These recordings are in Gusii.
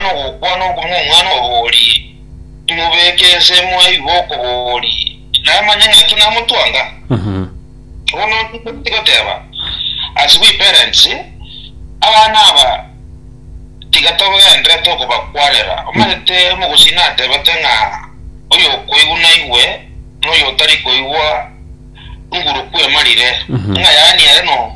nogokwana okwo nomwana oborie, imobeke ense mwaigwa okoboria, namanye ng'aki namotwanga. Bono ntigoti goteba as we parents, abana aba tiga togenderere tokobakwanera. Omanyete omogusii natebete ng'a oyokoigwa naigwe, na oyotari koigwa nguru kw'emarire. Ng'a yaani are no.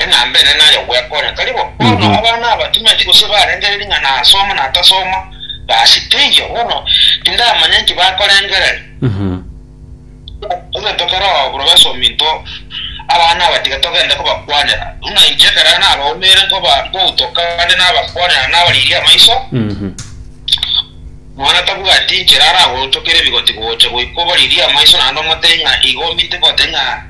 Enamba ene nayo gwekonya. Tari bo? Bono abana aba timanyeti gose barengereiri ng'a nasoma na tasoma. Basi teiyo. Bono tindamanya inki bakorengereria. Egento keroo professorm into abana aba tiga togende kobakwanera. Buna inche ekero nabaumire nkoba nkoutoka ande nabakwanera nabariiria amaiso, nonya tabwati inchera aragochokere ebigotigocha goika obariirie amaiso naende omotebi ng'a igo omite goteba ng'a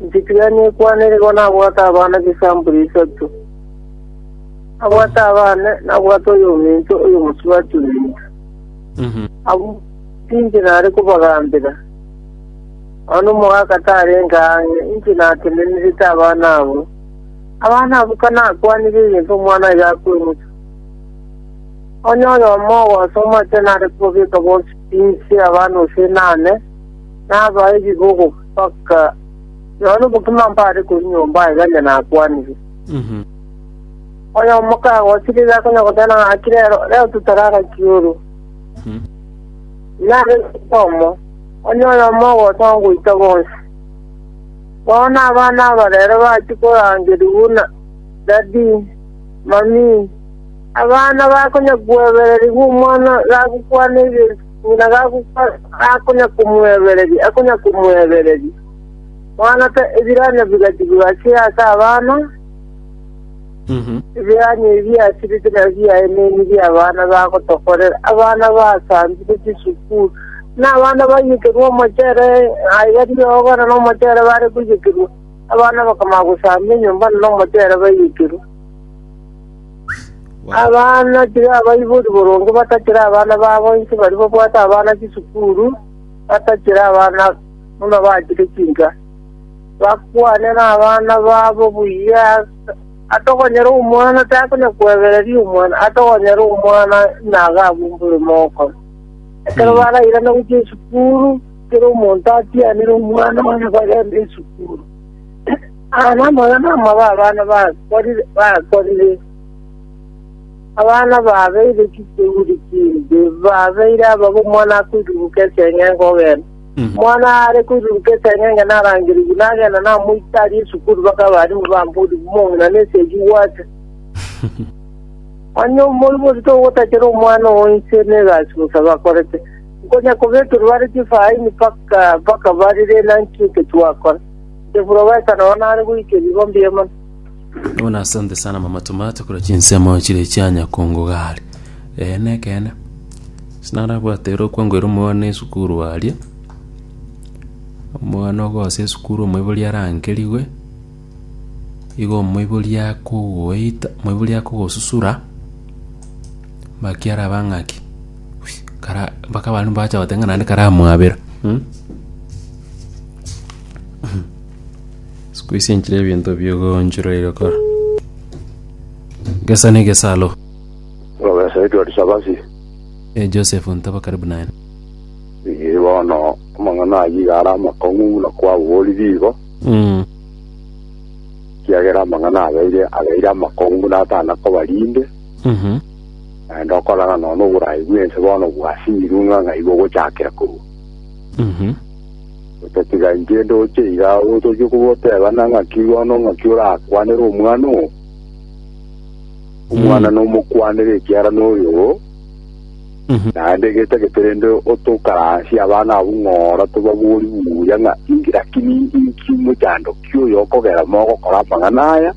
Nchitigani ekwane nigo nabwate abana chisampuli isato. Nabwate abane, nabwate oyominto, oyomosubati ominto. Abwo tinche nare kobagambera. Nonya nomogaaka tarenge ang'e, inche natenenerete abana abwo. Abana abwo kanakwanire egento omwana oyo akoemusa, onye oyomo ogosoma atenare kobabeka bonsi inse abana gose inane, Nabae ebigogo mpaka nonya obokima mbare korwa nyomba aye gari nakwanire. Oyomo kagochire iga konya goteba ng'aki rero rero totare agaki oro. Nare oyomo onye oyomo ogocha goita bonsi. Bono abana aba rero bachie korangeria buna dadi, mami, abana bakonya kwebererigwa omwana gagokwana ebinto. Buna gagokora akonyakomoebereria, akonyakomoebereria. Moanake ebiranya bigachigwa gake ase abana, ebiranya ebi biasirete nabio biaye neni bi'abana bagotokorera, abana baasambire chisukuru, na abana baiyekerwa omochere, aiga riogo na nomochere bare koiyekerwa, abana bakamanya gosamba enyomba na nomochere baiyekerwa. Abana tiri abaibori boronge batachera abana babo inse baria babwate abana chisukuru batachera abana buna bachire chinga. Bakwane nabana babo buya atokonyera omwana takonya kwebereria omwana atokonyera omwana naga abumbore mogokora. Ekero barairana gochia esukuru kera omonto atianere omwana one bagende esukuru. Aya namoyo namaba abana bakorire bakorire, abana babeire chiseuri chimbe, babeire ababo omwana akoiruruka eseng'enge kogenda. Omwana are koiruruka eseng'enge narangerigwe, nagenda namoita aria esukuru baka abarimu bambori bumong'ina na eseegi gwate. Onye omoibori togotachera omwana oo inse na egasi bosa bakorete, nkonya kobekerwa bare chifaini baka baka barire naki eke twakora. Eprofesa nao nare goika ebigo mbi'Emoni. Bono asante sana mama tomato korwa chinsemo chire chia nyakongo gare ee nekeene sinarabwate ere okwangwera omwana esukuru aria omwana ogosa esukuru omoibori arankerigwe igo omoibori akogoita omoibori akogosusura bakiaraba ng'aki kara mpaka abande mbacha goteba ng'a naende karamwabera mh. Sikuisinchire ebinto biogonchiroire kora. Gesa negesalo. Profesa Edward Sabasi Eh, Joseph ntaba karibu naye. iye bono amang'ana ayio iga ara amakong'u buna kwaborire igo Mm. kiagera amang'ana abeire abeire amakong'u buna atana kobarinde Mhm. naende okorana nono oborayi bwense bono bwasinyirwe ng'a ng'aiga ogochakera korwa Mhm. Otatiga inche ndoche iga otochie kogotebana ng'aki bono ng'aki orakwanere omwana oo. Omwana Mm. nomokwanere ekiara noyo, Mhm. naende getagete rende otokaransie abana abwo ng'ora tobabori buya ng'a inki lakini inki mochandoki oyo okogera mogokora amang'ana aya,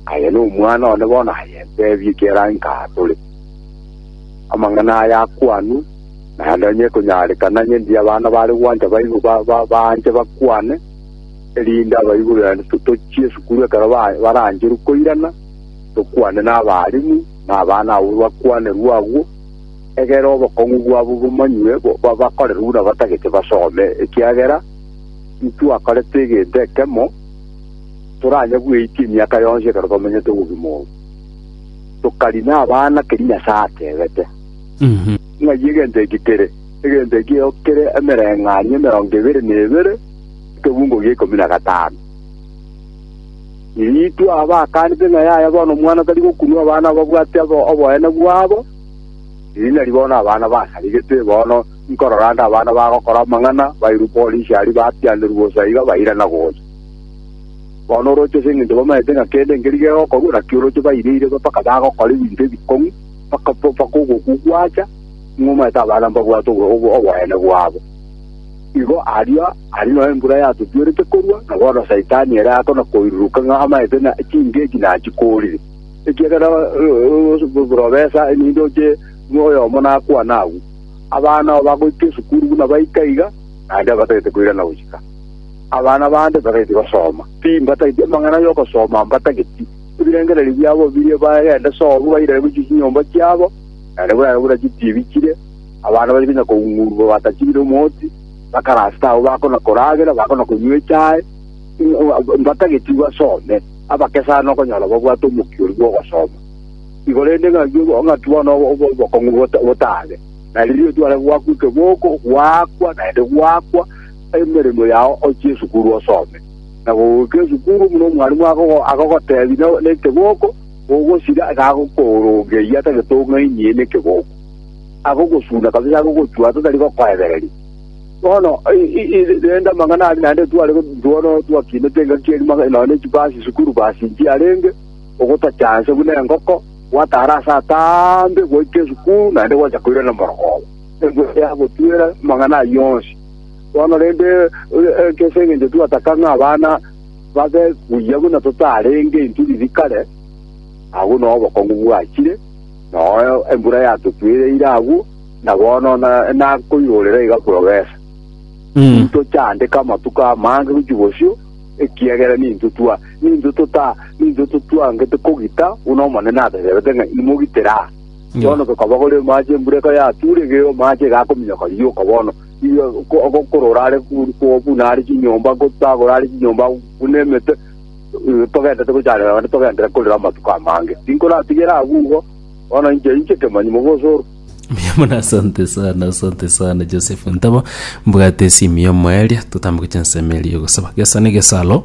aye nomwana one bono aye ntebie ekiara inka atore. Amang'ana aya akwanu Na nonye ekonyarekana ng'endie abana bare gwancha baigwe ba- ba- baanche bakwane, erinde abaibori baino to- tochie esukuru ekero ba- barancherwe koirana, tokwane nabaalimu, na abana abwo bakwanerwe agwo, egere obokong'u bwabo bomanywe, bo- ba- bakorerwe buna batagete basome, ekiagera intitwakorete egento ekemo, toranye bweitia emiaka yonsi ekero twamenyete obogima obo. Tokarina abana keria Nyasae atebete. Ng'ai egento eke kere? Egento ekio kere emereng'anio emerongo ebere na ebere, ekebungo gia ikomi na gatano. Iriitwe aba bakaanete ng'a yaya bono omwana tari gokunwa abana ababwate oboene bwabo, riria nari bono abana basaregete, bono nkorora nde abana bagokora amang'ana, bairwe polisi aria batianerwa bosa iga bairana gocha. Bono oroche ase engencho bamanyete ng'a kende nkeri gegokorwa, naki oroche baireire mpaka bagokora ebinto ebikong'u. bakatoba kogokwa gwacha, ng'a omanyete abana mbabwate oboyene bwabo. Igo aria aria nonya embura yatutuerete korwa, na bono Saitani ere akona koiruruka ng'a amanyete ng'a chingeki nachikorire, ekiagera borobesa ninde oche oyomo nakwane agwo. Abana aba bagoika esukuru buna baika iga, naende batagete koirana gochika. Abana bande batageti gosoma, ti mbatageti amang'ana ay'ogosoma mbatageti. Ebirengererio biabo biria bagenda sobo bairane gochia chinyomba chiabo, naende buna buna chitibichire, abana bari konya koung'urwa batachibire omoti, bakarasete abwo bakona koragera, bakona konywa echae, mbatageti basome, abake sana okonyora babwate omokia oria bw'ogosoma. Igo rende ng'aki ng'aki bono obokong'u botabe, na rirorio tware goakwa ekeboko, goakwa naende goakwa emeremo yao ochie esukuru osome. na gogoika esukuru buna omwalimu agogotebi nekegoko, gogosira iga agokorongeria atagete ong'ainie nekegoko. Agogosuna kabisa agogochua totari gokoebereria. Bono rende amang'ana aria naende tware bono twakinete engaki eria nonya ne chibasi esukuru basi nchiarenge, ogotachanse buna engoko, gwatara ase ataambe goika esukuru naende gocha koirana morogoro. Engwe yagotwera amang'ana ayio onsi. Bono rende, ase engencho twataka ng'a abana babe buya buna totarenge intwe bibi kare, agwo nao obokong'u bwachire, nao embura yatotwereire agwo, na bono nakoirorera iga profesa, tintochandeka amatuko amange gochia bosio, ekiagera nintwe twa nintwe tota nintwe totwangete kogita buna Omonene atatebete ng'a, Imogitere aa. Bono gokaba gore omaache, embura eka yatuure, gee omaache iga akominyoka rioka bono, iga ko- ogokora orare bur- ko- buna are chinyomba, gotagora are chinyomba buna emete, eh, togentete gochanera naende togentere korera amatuko amange. Tinkoratigera agwo igo, bono inche inche kemanyi mogosoro. Mbuya mono asante sana asante sana joseph ntabo mbwate esimu ya omoeria totambe gocha ensemo eria yogosaba gesa na egesa alo